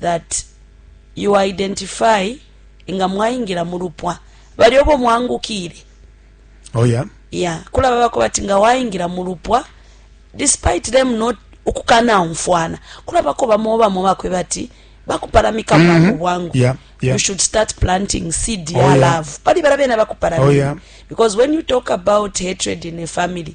that you identify nga mwaingila mu lupwa bali obo mwangukile oh yeah yeah kula baba ko bati nga waingila mu lupwa despite them not ukukana umfwana kula bako bamo bamo bakwe bati bakupalamika mm -hmm. bwangu yeah Yeah. you should start planting seed oh, ya yeah. love pali barabena bakuparamia oh, yeah. because when you talk about hatred in a family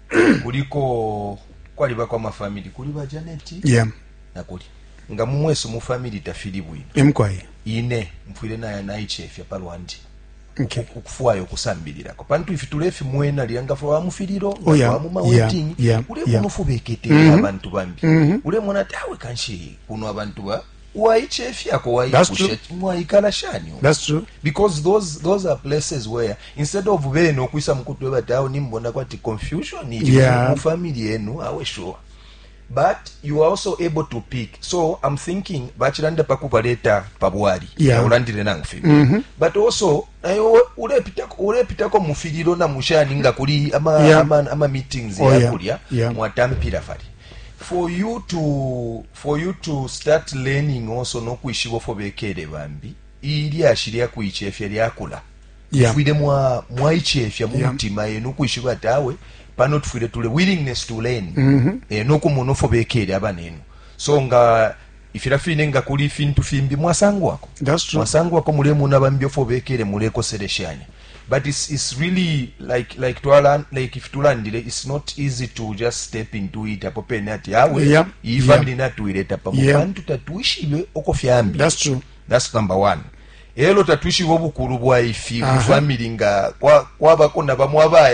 kuliko kwalibako amafamili kuli ba Janet yeah. nakuli nga mumwesu mu family tafili bwino emkwaye ine mfwile naya naichefya palwandi okay. ukufwaya okusambilirako pantu ifi tulefimwena lyangafula wa mufiliro oh, yeah. wamuma wedding yeah. yeah. ulemona yeah. ufubekete mm -hmm. abantu bambi mm -hmm. ulemona ati awe kanshi kuno abantu ba waicefyako waipushe mwaikala shani because those, those are places where instead of bene ukwisa mukutwe bati awo nimbona kwati confusion ili yeah. mu family yenu awe sure but you are also able to pick so i'm thinking bachilanda pakubaleta pabwali yeah. naulandile nangu fibi mm -hmm. but also nayo ulepitako ulepitako mufililo na mushani nga kuli ama, yeah. ama, ama meetings oh, yakulya yeah. yeah. mwatampira fali for you to for you to start learning also no kwishiba fo bekele bambi ilyashi lya kuicefya lyakula yeah. fwile mwa mwaichefya mu mutima yeah. eno kwishiba ati awe pano tufwile tule willingness to learn mm -hmm. e, eh, nokumona ofo bekele abanenu so nga ifila fine nga kuli ifintu fimbi mwasangwako mwasangwako mulemona bambi ofo bekele mulekoseleshanya But it's, it's really like like twala like if tulandile it's not easy to just step into it apo pene ati awe yeah, iyi yeah. family natuileta pamo yeah. pantu tatwishibe uko fyambi that's true that's number one elo tatwishibe obukulu bwa ifi uh -huh. family nga kwabako kwa na bamwe abaya